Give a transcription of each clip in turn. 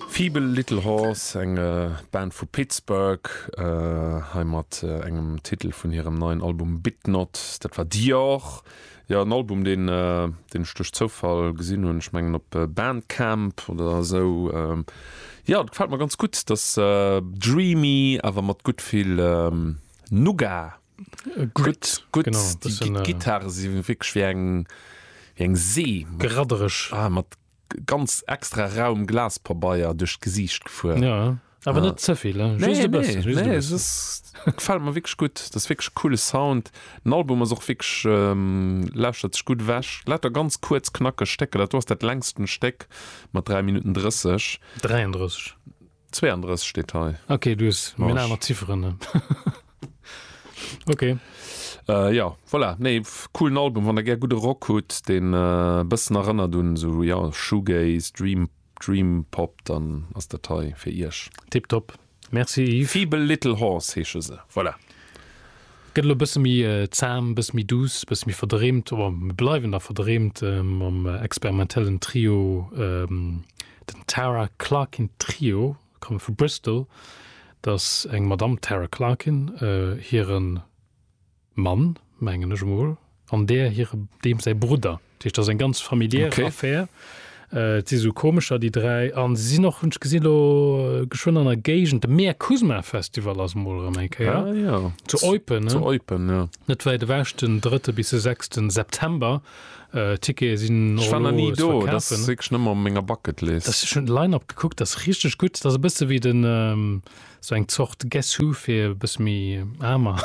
Feeble Little Horse, eng Band vu Pittsburgh, hei mat engem Titel vun hirem neien Album Bit Not, dat war Dior. Jo, en Album, deen ech duerch Zoufall gesinn hunn, ech mengen op Bandcamp oder esou. Jo, et gefält mer ganz gutt, et ass dreamy, awer mat gutt vill Nougat. Gutt, gutt. Genau, e bëssen. Déi Gittare si wierklech wéi eng, wéi eng See. Geraddereg. Ah, mat ganz extra rauem Glaspabeier duerch d'Gesiicht gefuer. Jo, awer net ze vill, just e bëssen. Nee, nee, just e bëssen. Nee, es gefält mer wierklech gutt. Dat ass wierklech e coole Sound. Den Album ass och wierklech, lauschtert sech gutt ewech. Lauter ganz kuerz, knackeg Stécker. Dat do ass dat längsten Stéck mat 3 Minutten 30. 33. 32 steet hei. Ok, du hues meng Marsch. aner Zifferen. Ok. Äh, jo, voilà. Nee, coolen Album, wann der gär gudde Rock hutt, deen e bëssen erënnert un esou, jo, Shoegaze, Dream, Dream Pop, dann ass dat hei fir Iech. Tiptop. Merci Yves. Feeble Little Horse heesche se. Voilà. Gëtt elo e bësse méi zahm, e bësse méi douce, e bësse méi verdreemt, oder mir bleiwen da verdreemt mam experimentellen Trio, den Tara Clarkin Trio, komme vu Bristol. Et ass eng Madamm Tara Clarkin, hire Mann, mengen ech emol. an där hire, deem säi Brudder. Dat heescht, dat ass eng ganz familiär Affär. Okay. Et si sou komescher, déi dräi. An se sinn och, hunn ech gesinn, elo geschwënn an der Géigend. De Mea Kusma Festival ass emol erëm eng Kéier. Ah jo. Zu Eupen. Zu Eupen, jo. Net wäit ewech, den drëtte bis de sechste September. D'Tickete sinn och elo ze verkafen. Ech war nach ni do. Dat ass wierklech nëmme op menger Bucketlist. Dat, ech hunn de Line-Up gekuckt, dat ass richteg gutt. Dat ass e bësse wéi den, sou eng Zort Guess Who fir e bësse méi aarmer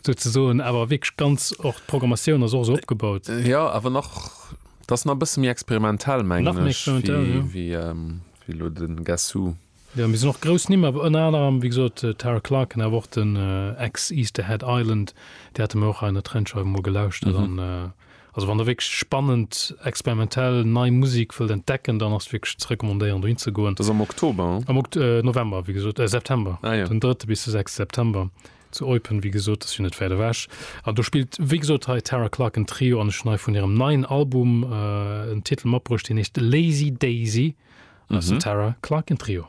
sou ze soen, awer wierklech ganz och d'Programmatioun ass och esou opgebaut. Jo, awer nach, dat ass nach e bësse méi experimentell mengen ech wéi elo de Guess Who. Jo, mir sinn och grouss Nimm, awer ënner anerem wéi gesot d'Tara Clarken, awer och den Ex-Easterhead Island, déi hate mir och hei an der Trendscheiw emol gelauschtert an Also wann der wierklech spannend, experimentell, nei Musik wëllt entdecken, dann ass wierklech ze recommandéieren dohin ze goen. Dass am Oktober? Am November wéi gesot, äh September, den drëtte bis de sechste September zu Eupen, wéi gesot, ass jo net wäit ewech. An do spillt wéi gesot hei Tara Clarke en Trio an ech hunn hei vun hirem neien Album en Titel matbruecht, deen heescht Lazy Daisy, an dat ass den Tara Clarke en Trio.